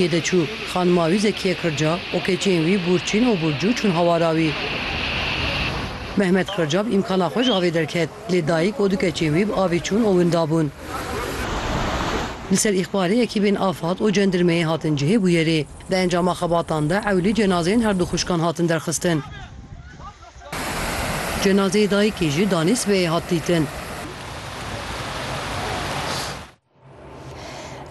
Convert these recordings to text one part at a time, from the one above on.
Yê de çû, xanima wî Zekîye Kirca û keçên wî Bûrçîn û Bûrcû çûn hawara wî. Mehmet Kirca bi îmkana xwe ji avê derket, lê dayîk û du keçên wî bi avê çûn û winda bûn. Li ser îxbarê ekîbên afad û cendirmeyê hatin cihê bûyerê. Di encama xebatan de ewlî cenazeyên her du xwişkan hatin derxistin. Cenazeyê dayîkê jî danê sibehê hat dîtin.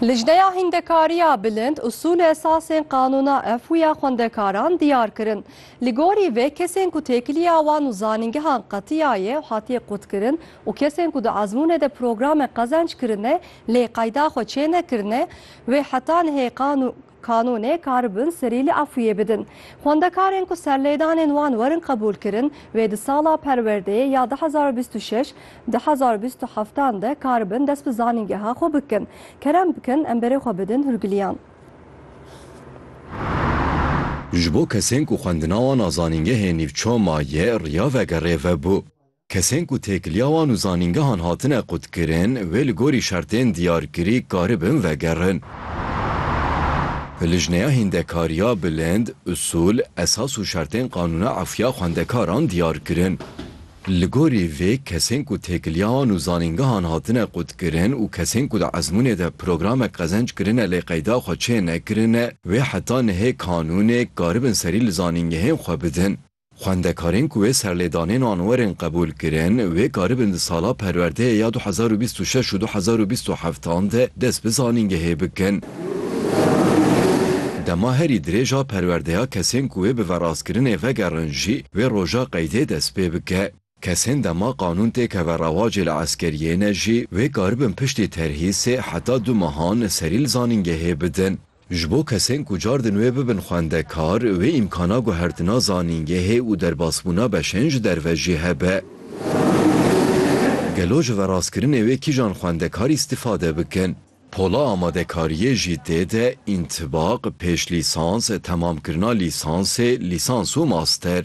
Lijneya Hîndekariya Bilind usûl û esasên qanûna FW ya xwendekaran diyar kirin. Li gorî vê kesên ku têkiliya wan û zanîngehan qetiya ye û hatiye qutkirin û kesên ku di ezmûnê de programên qezenc kirine lê qeyda xwe çênekirine wê heta nihê qanûn Kanûnê karibin serî li Efrîyê bidin. Xwendekarên ku serlêdanên wan werin qebûlkirin wê di sala perwerdeyê ya du hezar û bîst û şeş, du hezar û bîst û heftan de karibin dest bi zanîngeha xwe bikin. Kerem bikin em berê xwe bidin hûrgiliyan. Ji bo kesên ku xwendina wan a zanîngehê nîvçe maye riya vegerê vebû. Kesên ku têkiliya wan û zanîngehan hatine qutkirin, wê li gorî şertên diyarkirî karibin vegerin. Bi lijneya hîndekariya bilind, usûl, esas û şertên qanûna efûya xwendekaran diyar kirin. Li gorî vê kesên ku têkiliya wan û zanîngehan hatine qutkirin û kesên ku di ezmûnê de programek qezenc kirine lê qeyda xwe çê nekirine, wê heta nihê kanûnê karibin serî li zanîngehên xwe bidin. Xwendekarên ku wê serlêdanên wan werin qebûl kirin, wê karibin di sala perwerdeyê ya du hezar û bîst û şeş û du hezar û bîst û heft an de dest bi zanîngehê bikin. Dema herî dirêj a perwerdeya kesên ku wê bi verastkirinê vegerin jî wê roja qeydê dest pê bike. Kesên dema qanûn tê keve rewacê li eskeriyê ne jî wê karibin piştî terhî sê heta du mehan serî li zanîngehê bidin. Ji bo kesên ku cardin wê bibin xwendekar, wê îmkana guhertina zanîngehê û derbasbûna beşên ji derve jî hebe. Gelo ji verastkirinê wê kîjan xwendekar îstîfade bikin? Pola amadekariyê jî tê de întibaq, pêşlîsans, temamkirina lîsansê, lîsans û master.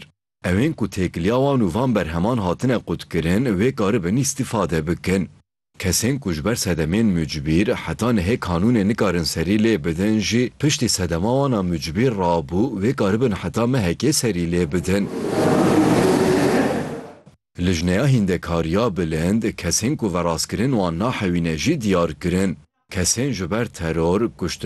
Ew ên ku têkiliya wan û van berheman hatine qutkirin wê karibin îstîfade bikin. Kesên ku ji ber sedemên mucbîr heta nihê kanûnê nikarin serî lê bidin jî piştî sedema wan a mucbîr rabû wê karibin heta mehekê serî lê bidin. Lijneya Hîndekariya Bilind kesên ku verastkirin wan nahewîne jî diyar kirin. Kesên ji ber teror, kuştin,